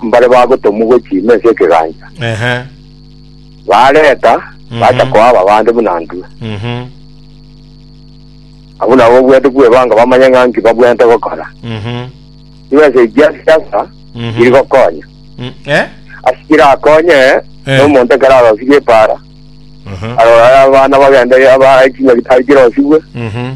Mbare bagotomwa gochia ime ense y'ekegancha, Ehe. bareta, Mhm. bacha koaba abande buna ntwe. Mhm. Abwo nabo obweete kwebanga bamanye ng'a nki babweete gokora. Mhm. Nigo ense echi ya siasa Mhm. iri gokonya. Mm, eh? Ase kirakonye Eh. nomonto ekero arosirie epaara, Aha. arore abana bagende aba chinyagitari chirosibwe, Mhm.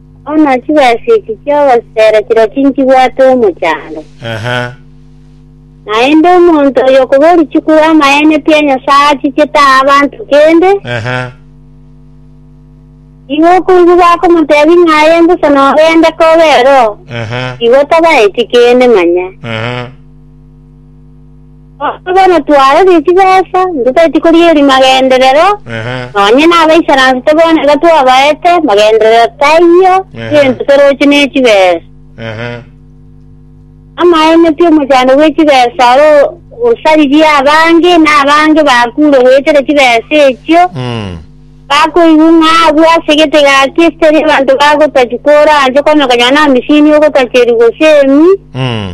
Bono chibesa echi chi'ogosera chiria tinchibwate omochando. Ehe. Naende omonto oyokoboria chikuru amaene pi a Nyasae achichete aa abanto kende, Ehe. nigo okoigwa bakomotebia ng'a aye mbosa nogende kobe ero, Ehe. igo tabaeti kende manya. Ehe. Gose bono twarorire chibesa, ntotageti koria eri magenderero, Ehe. nonye nabaisaransi tobone iga twabaete magenderero taiyo, Ehe. egento toroche nechibesa. Ehe. Amaene pi omochando bwe chibesa oro osaririe abange, na abange bakure goetera chibesa echio, Mm. bakoigwa ng'a abwo ase egetega ki esitari abanto bagotachi koranche, okonyokonywa na amisini ogotacherigwa gose emi, Mm.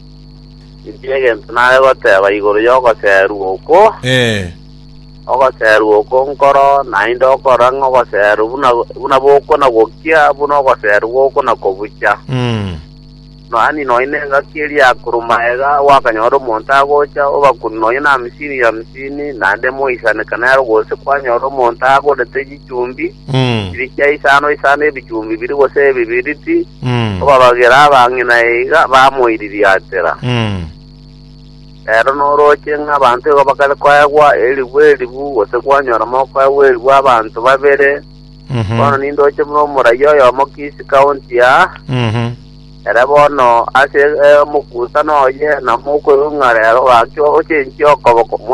Inche egento nare goteba igoro y'ogoserwa oko, Eh, ogoserwa oko nkoro naende okora ng'a ogoserwa buna buna bokona gokia buna ogoserwa gokona kobucha. mm, Noani nonya na engaki eria akuru maega gwakanyora omonto agocha obakuni nonya na amisini ya amisini naende moisaneka nero gose kwanyora omonto agorete chichumbi Mm. Chirichia isano isano ebichumbi biri gose ebibiriti, Mm. kobabagera abang'ina iga bamoiririatera. Mm. Rero norooche ng'a abanto igo bakare koegwa eribu eribu, gose kwanyoroma okoegwa eribu abanto babere. Mhm. Bono nindoche buna omoraia oyomo Kisii county aa, Mhm. ere bono ase eh, omokuusana oye na mokoirwa ng'a rero gaki ochenchie okoboko